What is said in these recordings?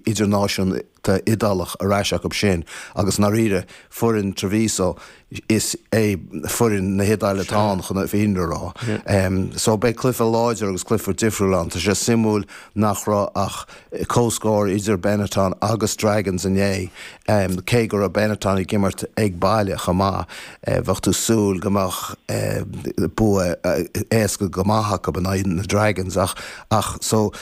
idirnáisiúnta Iodálach ar ais acu sin agus, i ndáiríre, foireann Treviso, is é foireann na hIodáile atá ann chun an fhírinne a rá. So beidh cluiche láidir agus cluiche difriúil ann. Tá sé suimiúil nach raibh ach comhscór idir Benetton agus Dragons inné, cé go raibh Benetton ag imirt ag baile chomh maith. Bheadh tú ag súil go mbeadh bua éasca go maith acu in aghaidh na Dragons ach, so,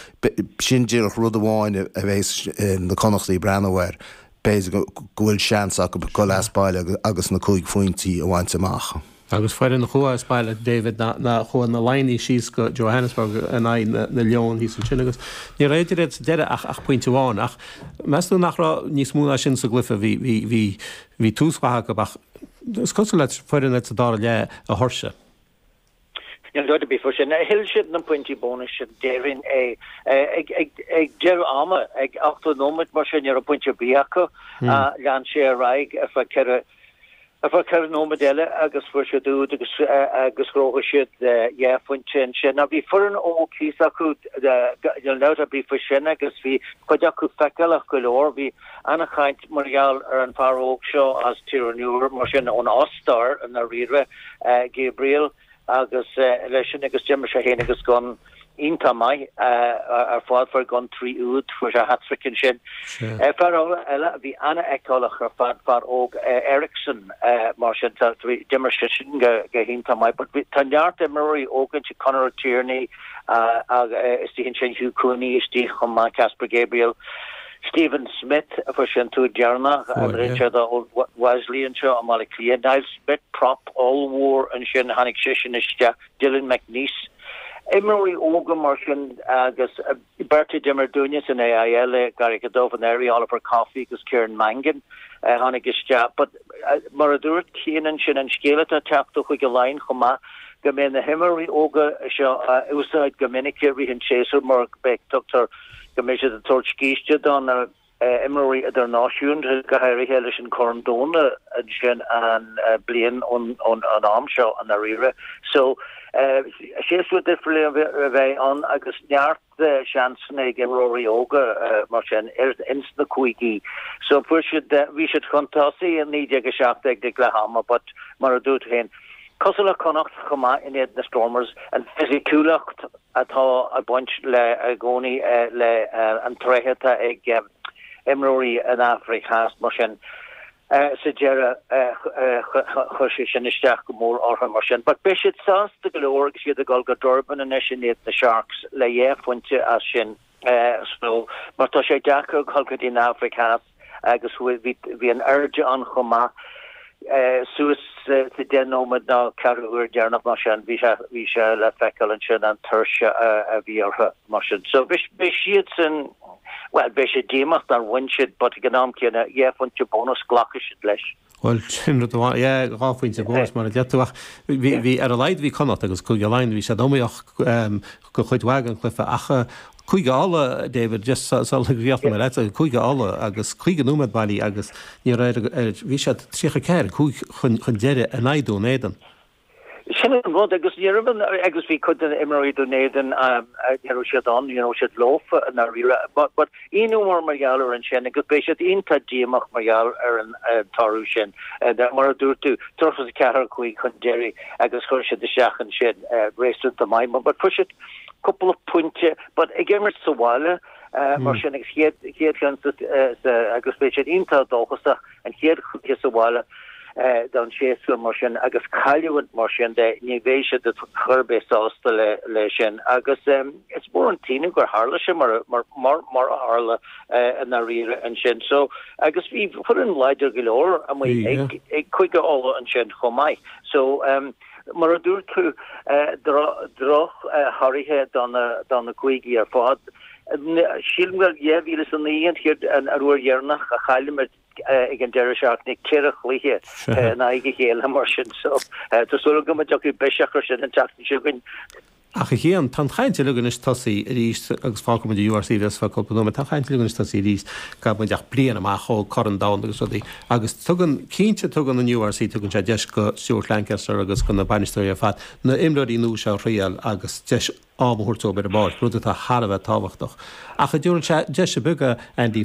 Sin díreach rud amháin a bhéas na Connachtaigh ag breathnú air, b'fhéidir go bhfuil seans acu dul as baile agus na cúig phointí a bhaint amach. Agus foireann a chuaigh as baile, David, ná chuaigh na Laighnigh síos go Johannesburg in aghaidh na Leon thíos ansin agus ní raibh eatarthu sa deireadh ach pointe amháin. Ach meas tú nach raibh níos mó ná sin sa gcluiche? Bhí tús maith acu ach is cosúil le foireann sa dara leath a thuirsigh. Níl dabht ar bith faoi sin. Thuill siad na pointí bónais sin, déarfainn é. Ag deireadh ama, ag ochtó nóiméad mar sin, ní raibh pointe ar bith acu. Lean sé ar aghaidh ar feadh ceithre nóiméad eile agus fuair siad úd agus ghnóthaigh siad dhá phointe ansin. Ach bhí foireann óg thíos acu, níl dabht ar bith faoi sin, agus bhí cuid acu feiceálach go leor. Bhí an-chaint mar gheall ar an bhfear óg seo as Tír an Iúir mar sin, ón Ostair i ndáiríre. Gabriel agus leis sin agus d'imir sé féin agus go hiontach maith ar fad fuair sé trí úd fuair sé hat-trick ansin. Fear eile a bhí an-fheiceálach ar fad fear óg Ericson mar sin d'imir sé sin go hiontach maith but tá neart imreoirí óga ansin Connor O'Tighearnaigh agus istigh ansin Hugh Cooney istigh chomh maith Caspar Gabriel. Stephen Smyth a fuair sé an t-úd deireanach an Richard Wesley anseo i mBaile Cliath. Niall Smyth, prop ollmhór ansin tháinig seisean isteach. Dylan McNeice. Imreoirí óga mar sin agus beirt a d'imir dúinne san AIL i gCarraig a' Dubh anuraidh, Oliver Coffey agus Ciarán Mangan a tháinig isteach. But mar a dúirt Cian ansin an scéal atá ag teacht ó Chúige Laighean chomh maith go mbeidh na himreoirí óga seo á n-úsáid go minic i rith an tséasúir mar tuigtear go mbeidh siad ag tabhairt scíste do na himreoirí idirnáisiúnta, go háirithe leis an Corn Domhanda ansin an bliain ón am seo i ndáiríre. So séasúr difriúil a bheidh ann agus neart seansanna ag imreoirí óga mar sin ins na cúigí. So fuair siad, bhí siad chun tosaigh 19-17 ag leath ama but mar a dúirt tú féin, cosúil le Connacht chomh maith in éadan na Stormers, an fisiciúlacht, atá ag baint le i gcónaí le na tréithe atá ag imreoirí na hAfraice Theas, mar sin sa deireadh chuir sé sin isteach go mór orthu mar sin. But beidh siad sásta go leor agus iad ag dul go Durban anois in aghaidh na Sharks le dhá phointe as sin. So mar tá sé deacair dhul go dtí an Afraic Theas agus bhí an airde ann chomh maith, suas le deich nóiméad ná ceathrú uair deireanach mar sin, bhí sé le feiceáil ansin an tuirse a bhí orthu mar sin. So beidh siadsan, bhuel beidh siad díomách nár bhuaigh siad but ag an am céanna, dhá phointe bónais, glacfaidh siad leis. Bhuel, sin rud amháin. Yeah, dhá phointe bónais mar a dúirt tú ach bhí, bhí, ar a laghad bhí Connachta agus Cúige Laighean, bhí siad iomaíoch do chuid mhaith den chluiche ach Cúige Uladh, David, just so, so sraoilleacht ab ea leath, Cúige Uladh agus 50 nóiméad bailí agus ní raibh ar, ar, bhí siad 34, 5 chun, chun deiridh in aghaidh Dún Éideann. Sin an rud agus ní raibh an, agus bhí cuid de na himreoirí Dún Éideann, ní raibh siad ann, ní raibh siad leofa i ndáiríre, but aon uair mar gheall ar an sin agus beidh siad iontach díomach mar gheall ar an toradh sin, mar a dúirt tú, 34, 5 chun deiridh agus chuir siad isteach ansin réasúnta maith, but chuir siad cúpla pointe, but ag imirt sa bhaile mar sin agus chéad seans agus beidh siad iontach dóchasach. An chéad chluiche sa bhaile don séasúr mar sin agus cailliúint mar sin, ní bheidh siad chor ar bith sásta leis sin agus is mór an t-ionadh gur tharla sé mar a tharla i ndáiríre ansin. So agus bhí foireann láidir go leor amuigh ag Cúige Uladh ansin chomh maith so. Mar a dúirt tú, drochthorthaí do na cúigí ar fad. Sílim gur 2009 an chéad an uair dheireanach a chaill muid ag an deireadh seachtaine ceithre chluiche in aghaidh a chéile mar sin so tá súil agam go dtiocfaidh biseach air sin an tseachtain seo chugainn. Ach a Cheoin, tá an chaint uilig anois tosaí arís agus fágfaidh muid an URC le sruth cúpla nóiméad, tá an chaint uilig anois tosaí arís, níl muid ach bliain amach ó Chorn an Domhain agus rudaí. Agus tugann, cinnte tugann an URC, tugann sé deis go Stuart Lancaster agus go na bainisteoirí ar fad, na himreoirí nua seo a thriail agus deis am a thabhairt dóibh ar an bpáirc, rud atá thar a bheith tábhachtach. Ach an dtabharann sé deiseanna beaga, Andy,